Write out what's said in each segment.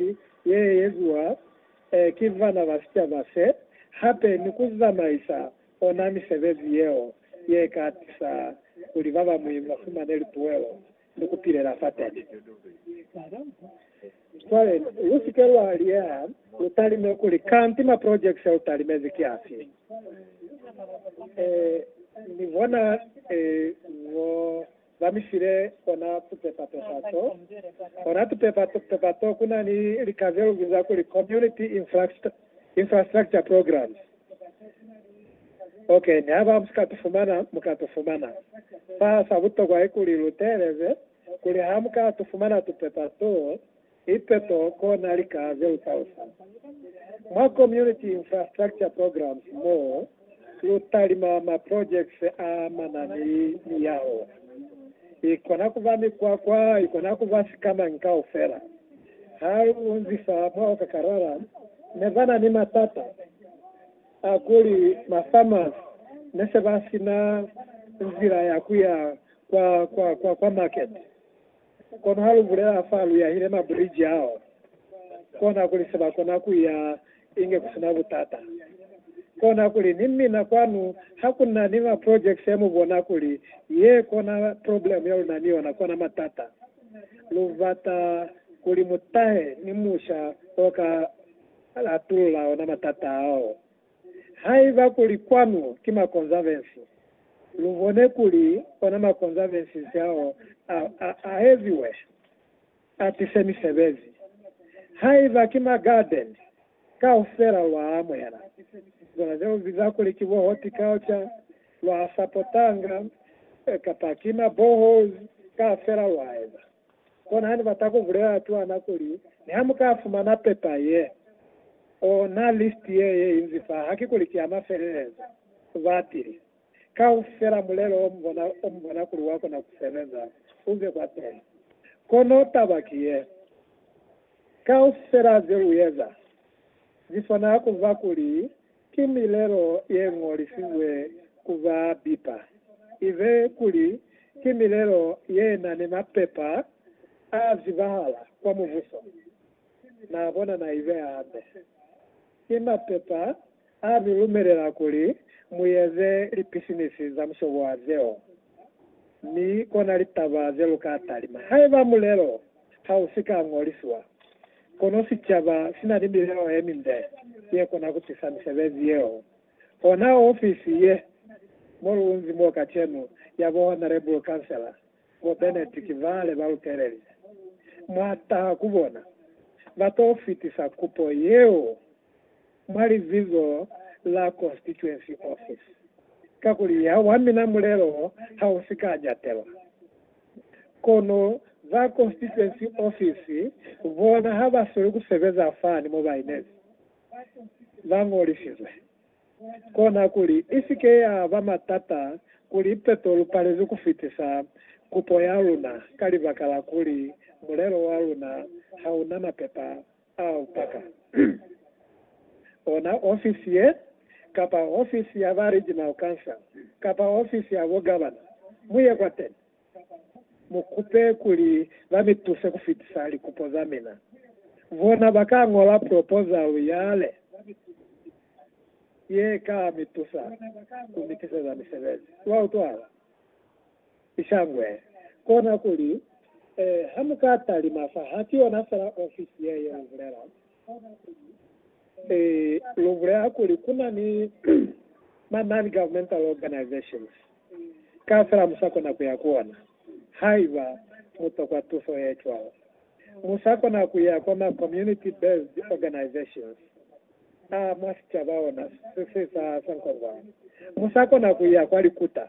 Misioni ye eziwa ki bana ba sicaba se, hape ni ku zamaisa ona misebezi yeo ye ka tusa kuli ba bañwi ba fumane lipuelo ni ku pilela fateni. Cwale, lu si ke lwa liyeha, lu talime kuli, Kanti maprojekiti ya lu talimezi ki afi? Ee, ni bona ee, ngo Ba mi file ona tupepa pepa to. Ona tupepa pepa to ku na ni lika ze lu biza kuli Community Infrastructure Programs. Ok, ni haba mu si ka tu fumana, mu ka tu fumana. Fa sa butokwa ki kuli lu teeleze kuli ha mu ka tu fumana tupepa to, Ipepo kona lika ze utausa mwa Community Infrastructure Programs mo lu talima ma projects a mana ni miyaho. Ikona kuba mikwakwa, ikona kuba sikamañi kaufela. Ha lu unzisa mwa Okakarara ne ba na ni matata a kuli ma farmers ne se ba sina nzila ya kuya kwa, kwa, kwa, kwa market. Kono ha lu bulela fa lu yahile mabriji ao, kona kuli se ba kona ku ya inge ku si na butata. Kona kuli, Ni mina kwanu ha ku na ni ma projects ya mu bona kuli ye kona problem ya lu na ni yona, kona matata. Lu bata kuli mu tahe ni musha o ka latulula ona matata ao. Haiba kuli kwanu ki makonzabensi, lubone kuli ona makonzabensi nsiaho a, a, aeziwe atise misebezi. Haiba ki ma garden, kaufela lwa amuhela zona ze ubiza kuli ki bo horticulture, lwa sapotanga, kapa ki ma boreholes, kaufela lwa eza. Kona hane bata ku bulela twana kuli, Ni ha mu ka fumana pepa ye, ona listi ye ye inzi fa, haki kuli ki ya mafelelezo, batili, kaufela mulelo o mu bona, o mu bona kuli wa kona ku sebeza, u ze kwateli. Kono taba ki ye, Kaufela ze lu eza, zi swanela ku ba kuli Ki milelo ye ñolisizwe ku ba bipa, ibe kuli ki milelo ye na ni mapepa a zibahala kwa Mubuso, na bona na ibeha hande. Ki mapepa a mi lumelela kuli mu eze lipisinisi za mushobo wa zeo, mi kona litaba ze lu ka talima haiba mulelo ha u si ka ñoliswa. Kono sicaba sina ni milelo yeminde yekona kutisa misebezi yeo. Ona ofisi ye mo lunzi mo kacenu ya bo Honourable Councillor bo Bennett ki bale ba lutelezi. Mwa taha ku bona, ba to fitisa kupo yeo. mwa lizizo la constituency office, kakuli ya wa mina mulelo ha u si ka jatelwa. Kono ba constituency office bona ha ba soli ku sebeza fani mo ba inezi, ba ñolisizwe. Kona kuli i si ke ya ba matata kuli ipeto lu palezwe ku fitisa kupo ya luna ka libaka la kuli mulelo wa luna ha u na mapepa A u paka ona ofisi ye, kapa ofisi ya ba Regional Council, kapa ofisi ya bo Governor, mu ye kwateni, mu kupe kuli ba mi tuse ku fitisa likupo za mina. Bona ba ka ñola proposal yale ye ka mi tusa ku mi tiseza misebezi. Lwa utwala? Sishangwe, kona kuli, eh, ha mu ka talima fa, ha ki yona fela ofisi ye, ye lu bulela, eh, lu bulela kuli ku na ni ma non-governmental organizations, ka fela mu sa kona ku ya ku ona, haiba mu tokwa tuso ye cwalo. Mu sa kona ku ya kwa ma community-based organizations a mwa sicaba ona se sa, sa nkongwani. Mu sa kona ku ya kwa likuta.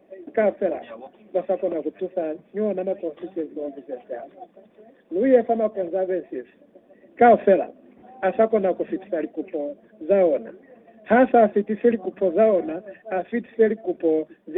Ka fela ba sa kona ku tusa ni ona makonzi ze ntombi ze siafu. Lu ye fa makonzi a be sisi ka fela a sa kona ku fitisa likupo za ona. Ha sa fitisi likupo za ona, a fitise likupo ze